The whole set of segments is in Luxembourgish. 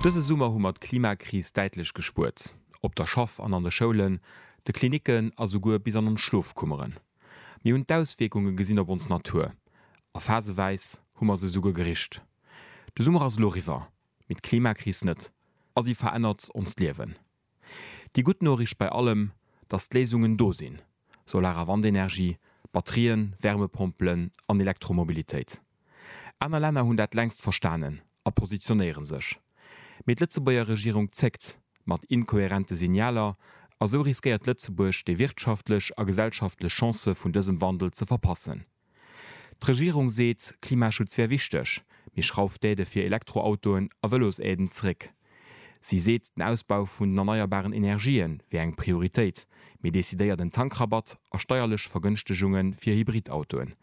Dëse Summer hu mer d'Klimakris däitlech gespuert, op der Schaff an an de Schoulen, de Klinicken a souguer bis an ons Schlofkummeren. Mir hunn d'Auswierkunge gesinn op ons Natur a phaseweis hu mer se souguer gericht. De Summer ass elo eriwwer, mee d'Klimakris net a si verännert onst Liewen. Déi gutt Noriicht bei allem, dass d'Léisungen do sinn, Solar a Wandenergie, Batterien, Wärmepompelen an Elektromobilitéit. Aner Länner hunn dat längst verstanen a positionéiere sech. Mee d'Lëtzebuerger Regierung zéckt mat inkohärente Signaler a sou riskéiert Lëtzebuerg déi wirtschaftlech a gesellschaftlech Chancë vun dësem Wandel ze verpassen. D'Regierung seet, Klimaschutz wär wichteg, mee schrauft d'Aide fir Elektroautoen a Vëlosaiden zeréck. Si seet, den Ausbau vun den erneierbaren Energië wär eng Prioritéit, mee decidéiert en Tankrabatt a steierlech Vergënschtegunge fir Hybridautoen.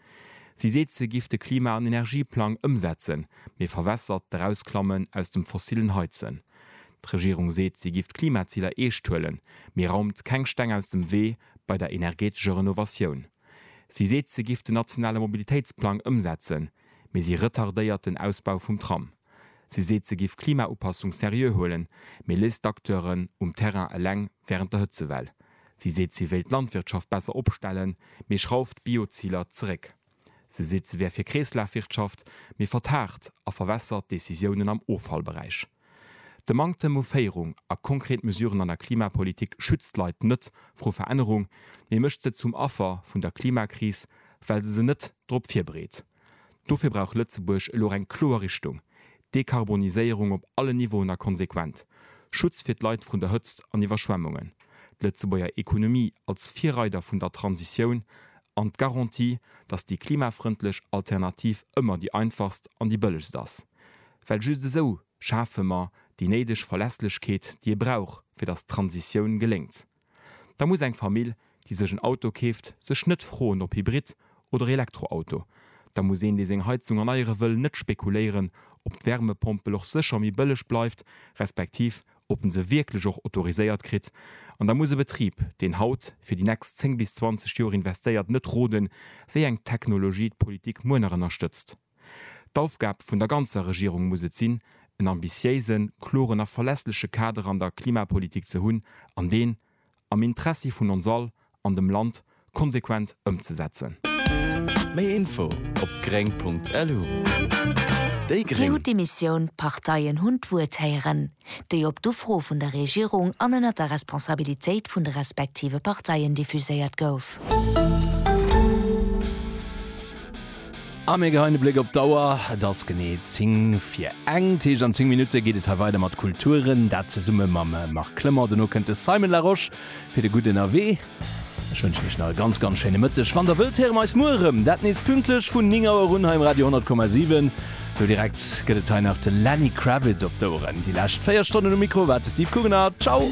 Si seet, se giff de Klima an Energieplang ëmsetzen, mee verwässert d'Erausklammen aus dem fossillen Heizen. D'Regierung seet, si giff d'Klimaziler eescht huelen, mee raumt keng Steng aus dem Wee bei der energeetescher Renovatioun. Si seet, se giff den nationale Mobilitéitsplang ëmsetzen, mee si retardéiert den Ausbau vum Tram. Si seet, se giff Klimaupassung seriö huelen, mee léisst d'Acteuren um Terrain eleng wärend der Hëtzewell. Si seet, se wéilt d'Landwirtschaft besser opstellen, mee schrauft d'Bio-Ziler zeréck. Se seet, se wär fir Kreeslafwirtschaft, mee vertagt a verwässert d'Decisiounen am Offallberäich. De Manktem u Féierung a konkret Mesuren an der Klimapolitik schützt d'Leit net vru Verännerung, mee mécht se zum Affer vun der Klimakris, well se se net drop virbereet. Dofir brauch Lëtzebuerg elo eng kloer Richtung, Dekarboniséierung op allen Niveauen a konsequent Schutz fir d'Leit vrun der Hëtzt an Iwwerschwemmungen, d'Lëtzebuerger Ekonomie als Virreider vun der Transitioun an d'Garantie, datt déi klimafrëndlech Alternativ ëmmer déi einfachst an déi bëllegst ass. Well just esou schafe mer déi néideg Verlässlechkeet, déi ee brauch, fir datt d'Transitioun geléngt. Da muss eng Famill, déi sech en Auto keeft, sech net froen, ob Hybrid oder Elektroauto. Da muss een, dee seng Heizung erneiere wëll, net spekuléieren, ob d'Wärmepompel och sécher méi bëlleg bleift, respektiv ob en se wierklech och autoriséiert kritt. An da muss e Betrib, deen haut fir déi nächst 10 bis 20 Joer investéiert, net roden, wéi eng Technologie d'Politik muer nach ënnerstëtzt. D'Aufgab vun der ganzer Regierung muss et sinn, en ambitiéisen, kloren a verlässleche Kader an der Klimapolitik ze hunn an deen, am Intressi vun ons all an dem Land, konsequent ëmzesetzen. Méi Info op gréng.lu Déi Gréng! Dir hutt d'Emissioun D'Parteien hunn d'Wuert héieren. déi op d'Ufro vun der Regierung an ënnert der Responsabilitéit vun de respektive Parteien diffuséiert gouf. A mir geheien e Bléck op d'Auer, et ass genee 10 fir eng. Téischt an 10 Minutte geet et hei weider mat Kulturen, dat zesumme mam Marc Clement. Dono kënnt de Simon Larosche fir de gudden Erwee. Ech wënschen iech nach e ganz ganz schéine Mëtteg. Wann der wëllt, héiere mer eis muer erëm. Dat nees pünktlech vun 9 Auer un hei um Radio 100,7. Do direkt gëtt et hei nach de Lenny Kravitz op d'Oueren. Déi lescht 4 Stonnen um Mikro war de Steve Kugener. Ciao!